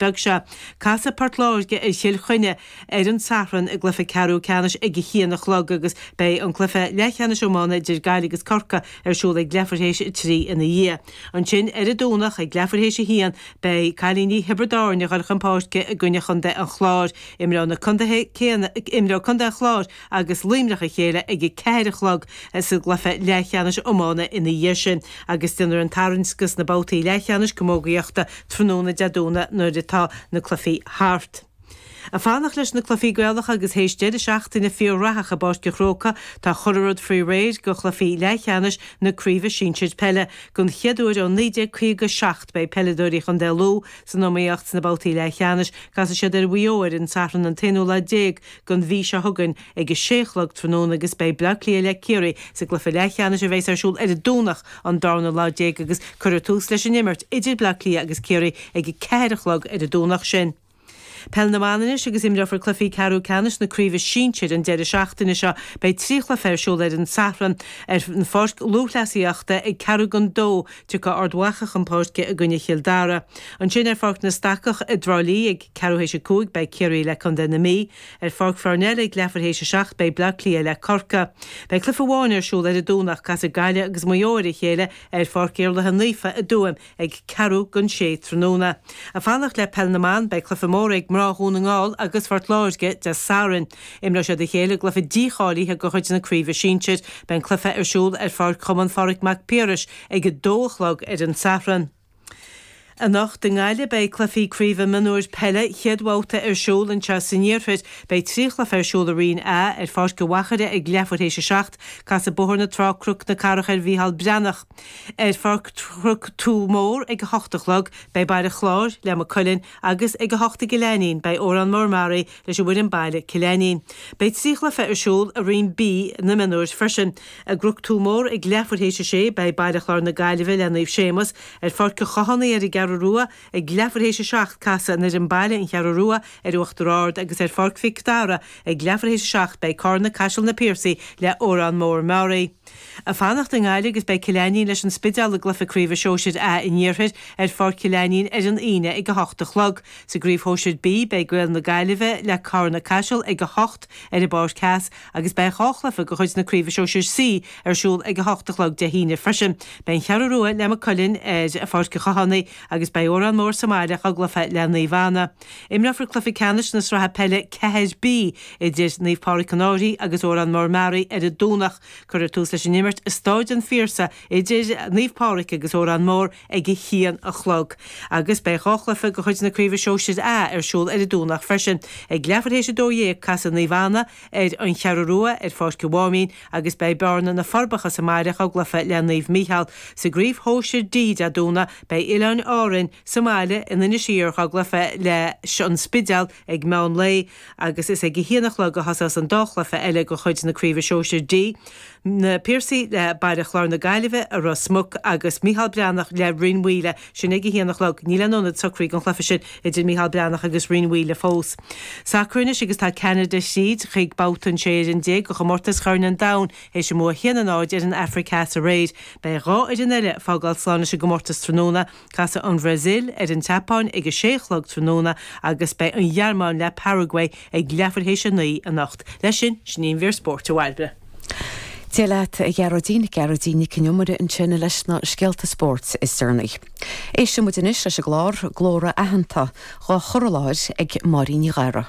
beag seo. Casfaidh Port Láirge ar Chill Chainnigh ar an Satharn i gcluiche ceathrú ceannais ag a haon a chlog agus beidh an cluiche leathcheannais iomána idir Gaillimh agus Corcaigh ar siúl ag leathuair théis a trí ina dhiaidh. Ansin ar an Domhnach ag leathuair théis a haon beidh cailíní Thiobraid Árainn ag dhul chun páirce i gcoinne chontae an Chláir. Imreoidh na contaetha céanna, imreoidh contae an Chláir agus Luimneach a chéile ag a ceathair a chlog sa gcluiche leathcheannais iomána ina dhiaidh sin agus déanfar an tarraingt do na babhtaí leathcheannais camógaíochta tráthnóna Dé Domhnaigh nuair atá na cluichí thart. Ag fanacht leis na cluichí Gaelacha agus théis deireadh seachtaine fíor-réchathach i bPáirc an Chrócaigh, tá chuile rud faoi réir do chluichí leathcheannais na Craoibhe Sinsir Peile. Don chéad uair ó 1957 beidh peileadóirí Chontae Lú san iomaíocht sna babhtaí leathcheannais. Casfaidh siad ar Mhaigh Eo ar an Satharn an t-aonú lá déag don mhí seo chugainn ag a sé a chlog tráthnóna agus beidh Bleá Cliath le Ciarraí sa gcluiche leathcheannais a bheas ar siúl ar an Domhnach an darna lá déag agus cuirfear tús leis an imirt idir Bleá Cliath agus Ciarraí ag a ceathair a chlog ar an Domhnach sin. Peil na mban anois agus imreofar cluichí ceathrú ceannais na craoibhe sinsir an deireadh seachtaine seo. Beidh trí chluiche ar siúl ar an Satharn ar an pháirc lúthchleasaíochta ag ceathrú don dó, Tiocfaidh Ard Mhacha chun páirce i gcoinne Chill Dara. Ansin ar Pháirc na Stacach i dTrá Lí ag ceathrú théis a cúig beidh Ciarraí le contae na Mí. Ar Pháirc Pharnell ag leathuair théis a seacht beidh Bleá Cliath le Corcaigh. Beidh cluiche amháin ar siúl ar an Domhnach casfaidh Gaillimh agus Maigh Eo ar a chéile ar Pháirc Iarlaithe Naofa i dTuaim ag ceathrú don sé tráthnóna. Ag fanacht le peil na mban, beidh cluiche mór ag mná Dhún na nGall agus Phort Láirge Dé Sathairn. Imreoidh siad a chéile i gcluiche dícháilithe de chuid na craoibhe sinsir. Beidh an cluiche ar siúl ar pháirc Chumann Phádraig Mhic Piarais ag a dó a chlog ar an Satharn. Anocht i nGaillimh beidh cluichí craoibhe mionúir peile chéad bhabhta ar siúl. Anseo san iarthar beidh trí chluiche ar siúl i Roinn A. Ar Pháirc an Mhachaire ag leathuair théis a seacht casfaidh Bóthar na Trá, Cnoc na Cathrach ar Mhícheál Breathnach. Ar pháirc Chnoc Tua Mór ag a hocht a chlog beidh Baile Chláir le Maigh Cuilinn, agus ag 8 i gCill Ainnín beidh Órán Mór Meáraí leis an bhfoireann baile Cill Ainnín. Beidh trí chluiche ar siúl i roinn B na mionúir freisin. I gCnoc Tua Mór ag leathuair théis a sé beidh Baile Chláir na Gaillimhe le Naomh Séamus ar Pháirc an Chathánaigh ar an gCeathrú Rua, ag leathuair théis a seacht casfaidh an fhoireann baile An Cheathrú Rua ar Uachtar Ard agus ar Pháirc Mhic Dara ag leathuair théis a seacht beidh Carna Caiseal Na Piarsaigh le Órán Mór Meáraí. ag fanacht i nGaillimh agus beidh Cill Ainnín leis an Spideál i gCluife Craoibhe Shóisir A an iarthair ar Pháirc Chill Ainnín ar an Aoine ag 8 a chlog. Sa gCraobh Shóisir B beidh Gaeil na Gaillimhe le Carna Caiseal ag 8 ar an bPáirc Theas agus beidh dhá chluife de chuid na Craoibhe Shóisir C ar siúl ag 8 a chlog Dé hAoine freisin. Beidh An Cheathrú Rua le Maigh Cuilinn ar Pháirc a' Chathánaigh agus beidh Órán Mór sa mbaile ag an gcluife le Naomh Anna. Imreofar cluiche ceannais na sraithe peile 4B idir Naomh Pádraig an Fhairche agus Órán Mór Meáraí ar an Domhnach. Cuirfear tús leis an imirt i Stáid an Phiarsaigh idir Naomh Pádraig agus Órán Mór ag a haon a chlog agus beidh dhá chluiche de chuid na Craoibhe Shóisir A ar siúl ar an Domhnach freisin. Ag leathuair théis a dó dhéag casfaidh Naomh Anna ar An Cheathrú Rua ar Pháirc an Mháimín, agus beidh Bearna na Forbacha sa mbaile dhá gcluiche le Naomh Mícheál sa gcraobh shóisir D. Dé Domhnaigh beidh Oileáin Árainn sa mbaile in Inis Oírr dhá gcluiche leis an Spidéal ag meán lae agus is ag a haon a chlog a thosós an dá chluiche eile de chuid na Craoibhe Sóisir D, Na Piarsaigh le Baile Chláir na Gaillimhe i Ros Muc, agus Micheál Breathnach le Rinn Mhaoile. Sin ag a haon a chlog. Níl aon ionad socraithe don chluiche sin idir Micheál Breathnach agus Rinn Mhaoile fós. Sacar anois agus tá Ceanada thríd chuig babhta an sé fhoireann déag de Chomórtas Chorn an Domhain théis a mbua a haon a náid ar an Afraic Theas aréir. Beidh dhá fhoireann eile ag fágáil slán leis an gcomórtas tráthnóna. Casfaidh an Bhrasaíl ar an tSeapáin ag a sé a chlog tráthnóna agus beidh an Ghearmáin le Paraguay ag leathuair théis a naoi anocht. Leis sin, sin í an mhír spóirt, a Bhairbre. Dia leat, a Ghearóidín. Gearóidín Nic an Iomaire ansin leis na scéalta spóirt is deireanaí. Éistfidh muid anois leis an gclár, Glórtha Aitheanta, dhá chur i láthair ag Máirín Ní Ghadhra.